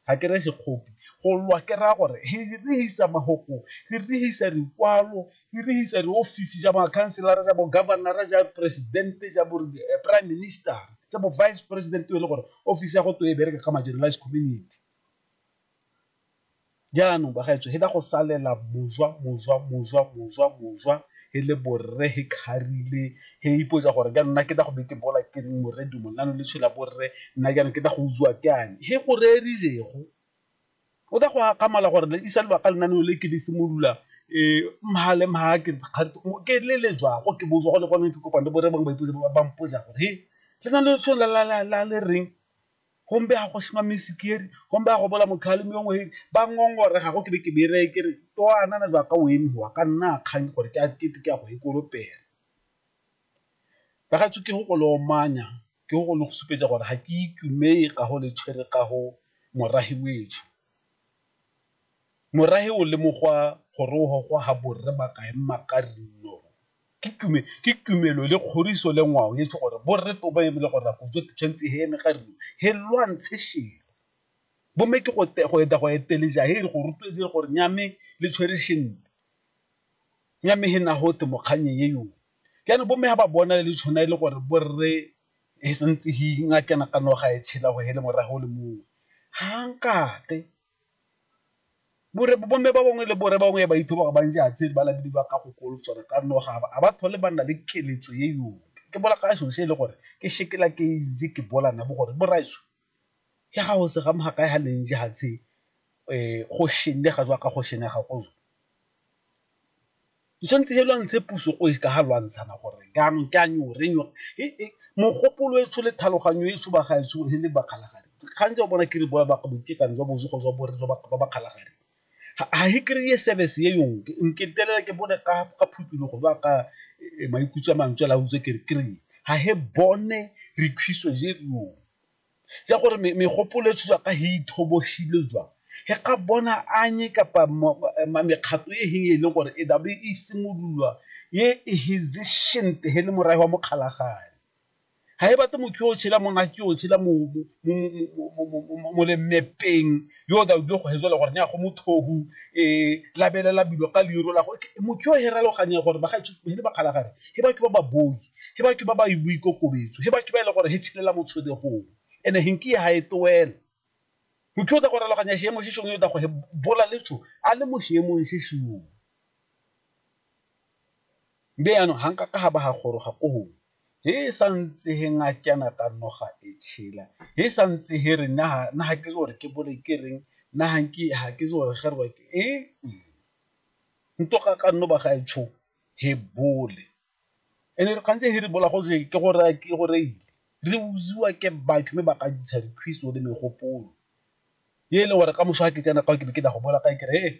ga ke re sekgopi go lwa ke raya gore he rehisa magoko he rehisa dikwalo he rehisa diofisi ja makhanselara ja bogabanara ja presidente ja bo eh, prime minister ja bo vice president e le gore ofisi ya go to e bereka ka marginalized community jaanong bagaetso he da go salela mojwa mojwa mojwa mojwa mojwa he le borre he kharile he ipotsa gore ka nna ke da go be ke bola ke reng morre dumo nna no le tshela borre nna ke ke da go utswa ke ane he go rerirego o da go akamala gore le isa lebaka lena no le ke le simolola um mha le mha ke ke le le jwago ke botswa go le gone ke kopane borre bangwe ba ipotsa ba mpotsa gore he le na le tshwela la le reng gombe ga go shima mesikeri gombe ga go bola motho a le mongwe he ba ngongore ga go ke be ke bere ke re to ana na jwa ka o eme wa ka nna a kgang gore ke a ke ke a go e koropela ba ga tsoke go go lo manya ke go lo go supetsa gore ga ke itumele ka go le tshwere ka go morahi wetsho Morahe o lemogwa gore o gogwa ga borre ba kae Makarinno ke tumelo le kgoriso le ngwao e tse gore borre to ba e bile gore go jo tshwanetse he eme ga rino he lwantshe shelo bomme ke go eta go eteleja he re go rotloetse le gore nyame le tshwere shente nyame he na ho te mokganni ye yo jaanong bomme ga ba bona le tshwana e le gore borre he santse he nna ke nagana gore ga e tshela gore hele morago o le mongwe ha nkake bore bo mme ba bangwe le bone bangwe ba ithuta gore ba ntse a tshele ba le ba ka go kolo tsone ka nna ga ba ba thole ba nna le keletso e yotlhe ke bolela ka selo se e le gore ke sekela ke itse ke bola nna bo gore bo raiso ke ga go se ga ga kae ga le ntse ga tshe go šhenne ga jaaka go šhenne ga go tshwanetse fa lwantshe puso go ka ga lwantshana gore jaanong ke a nyo re nyo mogopolo e tsho le tlhaloganyo e tsho ba ga e tsho le ba kgalagadi gantsi o bona ke re boa ba ke ka ntsha bosi go jwa bone ba ba kgalagadi. ga e kry-e service e yonke nke ntelela ke bone ka phuthulogo ba ka e, maikutso a mantswe la utse ke re kry-e ga he bone re khwiso je reo ja gore megopolo e tswa ka he ithoboshile jwa he ka bona anye kapa mekgato e heng e leng gore e dabe e simololwa ye e hesitant he le morago wa mokgalagane ga e batle motho yo o tshela monna ke o tshela mo lemepeng yo o tla o dilo go hezela gore ne ya go mothohu um e, labelela bilo ka leiro la go motho yo heraloganye gore bagaetsho he le bakgalagare he batho ba ba boi he batho ba ba boikokobetso he batho ba e le gore he tshelela mo tshodegong ene he nke ga e toela motho o tla go raloganya seemo se sengwe o tla go he bola letso a le mo seemong se sengwe be yaanong ga nka ka ga ba ga goroga ko gongwe he sa ntse he ngakeana ka noga e tšhela he sa ntse he re na na ha ke gore ke bole ke reng na ha ke ha ke gore ge re ke e nto ga ka nno ba ga e tsho he bole ene re kgantse he re bola go je ke gore ke gore ile re utswiwa ke batho mme ba ka ntsha dikgwiso le megopolo e le gore ka moso ga ke tsena ka ke be ke tla go boela kae ke re he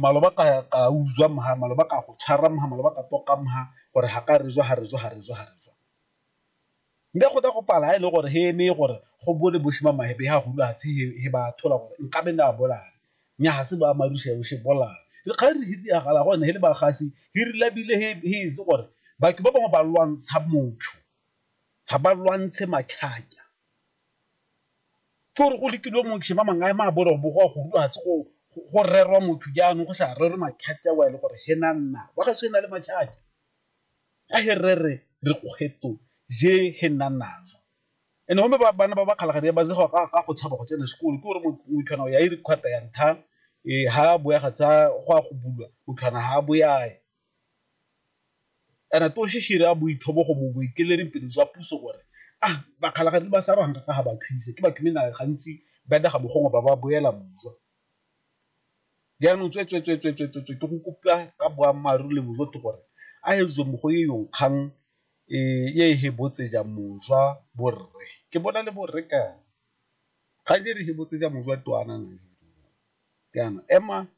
maloba ka utswa mha maloba ka go tshwara mha maloba ka toka mha gore ga ka re jwa ga re jwa ga re jwa ga re jwa nka go tla go pala ha e le gore he eme gore go bone boshima mahebe ha hulu hatshe he ba thola gore nka be na bolala nya ha se ba marusha yo she bolala le ga re hitse ya gala gone he le ba gasi he re labile he he se gore batho ba bangwe ba lwantsha motho ga ba lwantshe matlhaka Ke gore go lekilwe motho ba mangwe a ema a bo go a go rua go go rerwa motho jaanong go sa rerwe makhate a le gore he na nna wa ga se na le makhate a he re re re kgwetlho je he nna nama and home ba bana ba ba kgalagadi ba zega ka go tshaba go tsena sekolo ke gore motho ya e re kgwatha ya ntlha e ha bo ya ga tsa go a go bulwa o tlhwana ha bo ya. Kana Toshishi re a boithobo go mo boekelereng pele jwa puso gore a bakgalagadi ba sa ranga ka ga ba Khwise ke batho mme na gantsi ba daga bogongwe ba ba boela bojwa. Jaanong tswe tswe tswe tswe tswe tswe tswe ke go kopa ka boammaaruri le bojotho gore a e jwe mogo ye yong kgang e ye e hebotseja mojwa borre. Ke bona le borre kana. Kgang je re hebotseja mojwa to ana na je. Kana ema